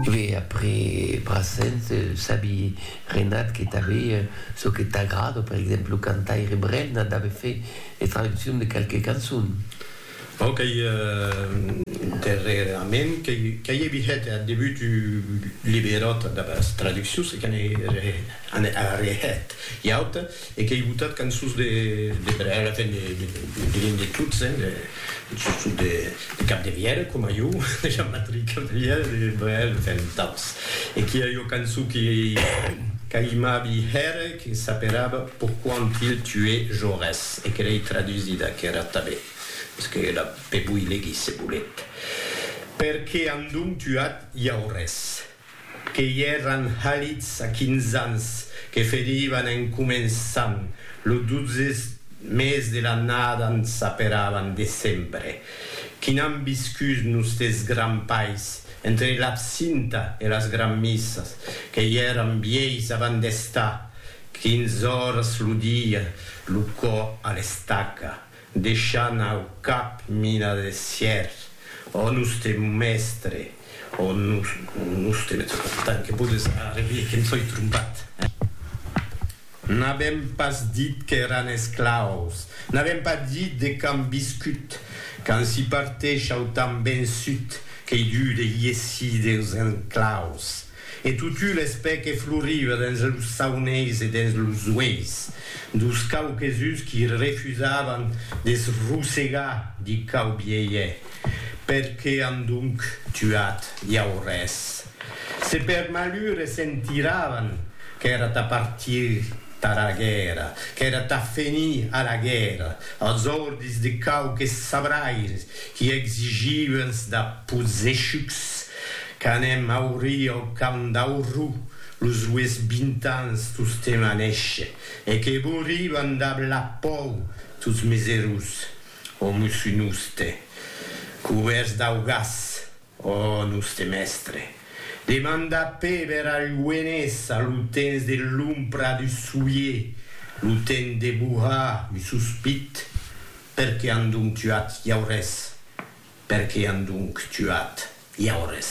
Ve après Brassens, sabi Renat que tanbe çò que t'agrada, per exemple lo cantaire Brel n'a dave fait de traduccion de qualques cançons. Bon, qu'ei darrerament qu'ei evi hèt ath debut un liberòt damb as traduccions e que n'ei arrehèt ua auta. E qu'ei botat cançons de brèga, enfin diguem de tots, hein, de sustot de Capdevièlh, coma jo, de Jean-Patrick Capdevièlh, de Brel, enfin d'autres. E qu'i a ua cançon que qu'aimabi hèr, que s'aperava Pourquoi ont-ils tué Jaurès? e que l'ei tradusida aquera tanben, mès que la pe voi legir se volet, Perqué an donc tuat Jaurès? que i èran halits a quinze ans, que ferivan en començant lo dotze mes de l'annada en s'aperavan decembre, qui n'an viscut nustes grands pais, entre l'absinta e las granmissas, que i èran vièis avant d'estar quinze oras lo dia lo cò a l'estaca, Deishant au cap mina de sièr, Ò nustre mèstre, ò nustre mèstre, tant que podes arrevier que em soi trompat, eh? N'avèm pas dit qu'èran esclaus, n'avèm pas dit de quand viscut, quand s'i parteish au temps vençut, qu'ei dur de iessir deus enclaus. E totu l'espè que floriva dens los sauneis e dens los ueis dos quauques-uns qui refusavan de se rosegar di quau bielhe, per que an donc tuat iau res? Se per malur e se'n tiravan, qu'èra tà partir tara guèrra, qu'èra tà fenir a la guèrra, als ordis de quauques sabraires qui exigivan-s da possechucs Qu'anem aurir au camp d'Aurrú los rues bintans tostemp a néisher, e que bouriban dab la pòu tots mes erós, o mosso noste, cubèrts dau gas, o noste mèstre, demanda Péber al Lluenés a lo temps de l'ompra du soulier, lo temps de bohar un sospit, Per qué an donc tuat Jaurès? Per qué an donc tuat Jaurès?